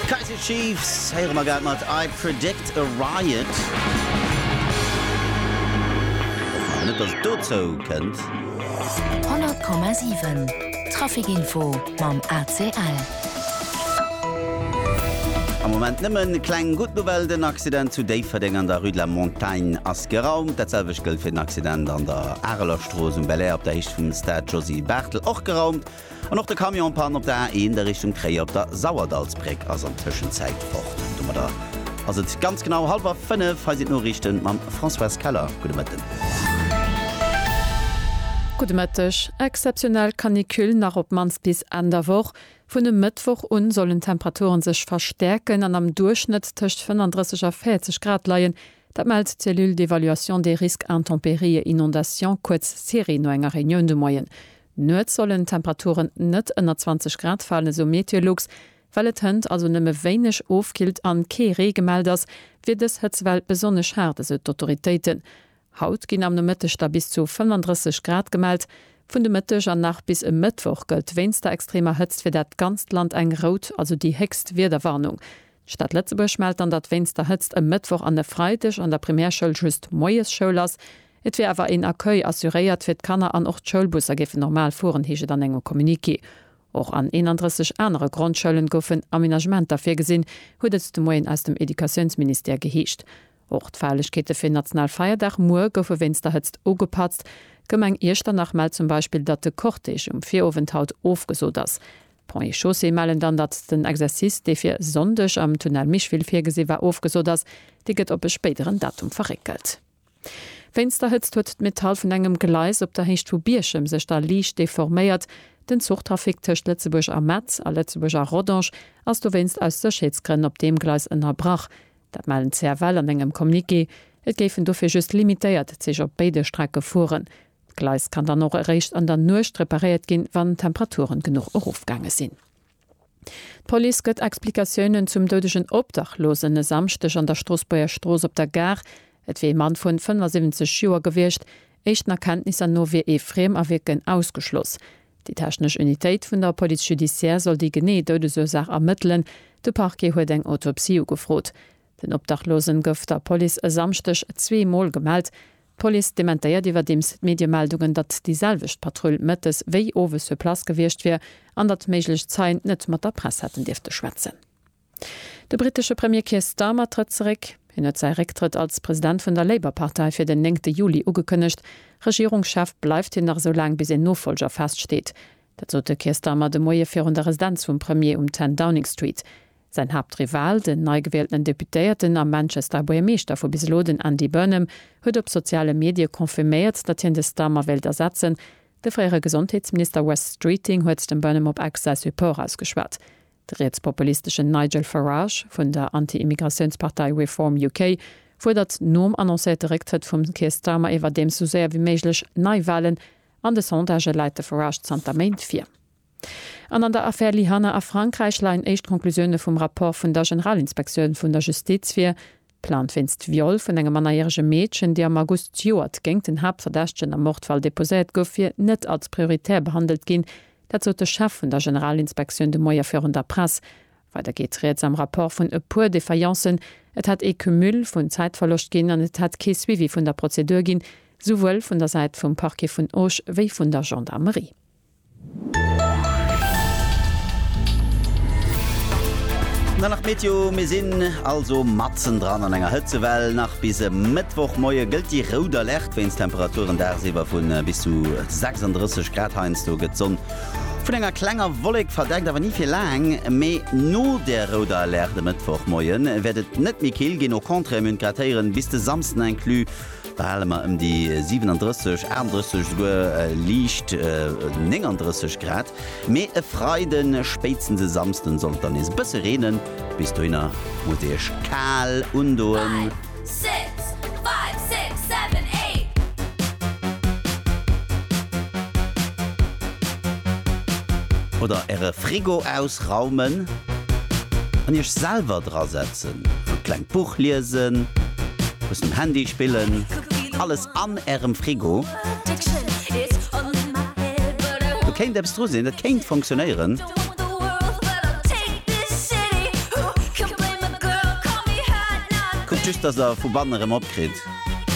D'Kaiser Chiefs héiere mer grad mat I Predict a Riot. Net dass et dozou kënnt. 100,7 Traficinfo mam ACL. Am Moment nëmmen kleng gutt Nouvelle, den Accident zu Déifferdeng an der Rue de la Montagne ass geraumt. Dat selwecht gëllt fir den Accident an der Arelerstrooss um Belair op der Héicht vum Stade Josy Barthel, och geraumt. An och de Camion en panne op der A1 a Richtung Tréier op der Sauerdallsbréck ass an Tëschenzäit fort. Domadder ass et ganz genau hallwer 5. Hei sinn d'Noriichten mam Françoise Keller. Gudde Mëtten. Gudde Mëtteg. Exzeptionell Canicule nach op d'mannst bis Enn der Woch. Vun e Mëttwoch un sollen d'Temperature sech verstäerken an am Duerchschnëtt tëscht 35 a 40 Grad leien. Dat mellt d'Cellule d'évaluation des risques intempéries et inondations, kuerz CERI, no enger Reunioun de Moien. Nuets sollen d'Temperaturen net ënner 20 Grad falen, esou Meteolux. Well et hënt also nëmme wéineg ofkillt an kee Ree gemellt ass, wier dës Hëtzewell besonnesch haart, esou d'Autoritéiten. Haut ginn am Nomëtteg da bis zu 35 Grad gemellt. Vun de Mëtteg an nach bis e Mëttwoch gëllt wéinst der extremer Hëtzt fir dat ganzt Land eng rout, also déi héchst Wiederwarnung. D'Stad Lëtzebuerg mellt dann, datt wéinst der Hëtzt e Mëttwoch an e Freideg an der Primärschoul just Moiesschoul ass. Et wier awer een Accueil assuréiert fir d'Kanner an och d'Schoulbusser géifen normal fueren, heescht et an engem Communiqué. Och an 31 anere Grondschoulen goufen Aménagementer virgesinn, huet et de Moien aus dem Educatiounsministère geheescht. Och d'Feierlechkeete fir national Feierdag muer goufe wéinst der Hëtzt ugepatzt. D'Gemeng Iechternach mellt zum Beispill, datt de Cortège um Virowend haut ofgesot ass. D'Ponts et Chaussées mellen dann, datt den Exercice, dee fir Sonndeg am Tunnel Micheville virgesi war, ofgesot ass. Dee gëtt op e spéideren Datum verréckelt. Wéinst der Hëtzt huet d'Metall vun engem Gleis op der Héicht vu Bierchem sech da liicht deforméiert. Den Zuchtrafic tëscht Lëtzebuerg a Metz a Lëtzebuerg a Rodange ass dowéinst aus Sécherheetsgrënn op deem Gleis ënnerbrach. Dat melden d'CFL an engem Communiqué. Et géifen dofir just limitéiert Zich op béide Strecke fueren. D'Gleis kann dann och eréischt an der Nuecht reparéiert ginn, wann d'Temperaturen genuch erofgaange sinn. D'Police gëtt Explikatiounen zum doudegen Obdachlosen e Samschdeg an der Stroossbuerger Strooss op der Gare. Et wier ee Mann vun 75 Joer gewiescht. Éischten Erkenntnisser no wier ee Friemerwierken ausgeschloss. Déi technesch Unitéit vun der Police judiciaire soll déi genee Doudesursaach ermëttelen. De Parquet huet eng Autopsie ugefrot. Den Obdachlosen gouf der Police e Samschdeg zwee Mol gemellt. D'Police dementéiert iwwerdeems d'Mediemeldungen, datt déi selwecht Patrull mëttes wéi owes sur place gewiescht wier an datt méiglech Zeien net mat der Press hätten dierfte schwätzen. De brittesche Premier Keir Starmer trëtt zeréck. Hien huet säi Récktrëtt als President vun der Labour-Partei fir den néngte Juli ugekënnegt. Regierungschef bleift hien nach esou laang, bis een Nofollger feststeet. Dat sot de Keir Starmer de Moie virun der Residenz vum Premier um 10 Downing Street. Säin Haaptrival, den neigewieltenen Deputéierten a Manchester Buergermeeschter vu bis elo, den Andy Burnham, huet op soziale Medie confirméiert, datt hien de Starmer wéilt ersetzen. De fréiere Gesondheetsminister Wes Streeting huet dem Burnham op Ex säi Support ausgeschwat. De rietspopulisteschen Nigel Farage vun der Anti-Immigratiounspartei Reform UK fuerdert nom annoncéierte Récktrëtt vum Keir Starmer iwwerdeems esou séier wéi méiglech Neiwalen. An de Sondagë läit de Farage zanter Méint vir. An an der Affär Lyhanna a Frankräich leien éischt Conclusioune vum Rapport vun der Generalinspektioun vun der Justiz vir. Plainte wéinst Viol vun engem mannerjärege Meedchen, déi am August zejoert géingt den Haaptverdächtegen am Mordfall deposéiert gouf, wier net als prioritär behandelt ginn. Dat sot de Chef vun der Generalinspektioun de Moie virun der Press. Weider geet rieds am Rapport vun e puer Défaillances, Et hätt ee Cumul vun Zäitverloscht ginn an et hätt kee Suivi vun der Prozedur ginn, souwuel vun der Säit vum Parquet vun Auch wéi vun der Gendarmerie. Dann nach Meteo, Mir sinn also matzendran an enger Hëtzewell. Nach bis e Mëttwochmoie gëllt déi rout Alerte wéinst Temperaturen dagsiwwer vu bis zu 36 Grad. Heiansdo gëtt d'Sonn vun enger klenger Wollek verdeckt, awer ni fir laang. Mee no där rouder Alerte e Mëttwochmoie wäert et net méi kill ginn, au contraire, mir hunn d'Gradhéieren bis de Samsden inclus. Behale mer ëm déi 37, 38, esouguer liicht 39 Grad, mee e Freide spéitstens e Samsden soll et dann nees e bësse reenen. Bis dohinner musst dir iech kal undoen. Oder äre Frigo ausraumen an iech selwer dra setzen. Schwätzen. E klengt Buch liesen. Muss um Handy spillen. Alles an ärem Frigo. Do kéint eppes dru sinn, et kéint funktionéieren. Kuckt just, dass der vu banne rem opkritt.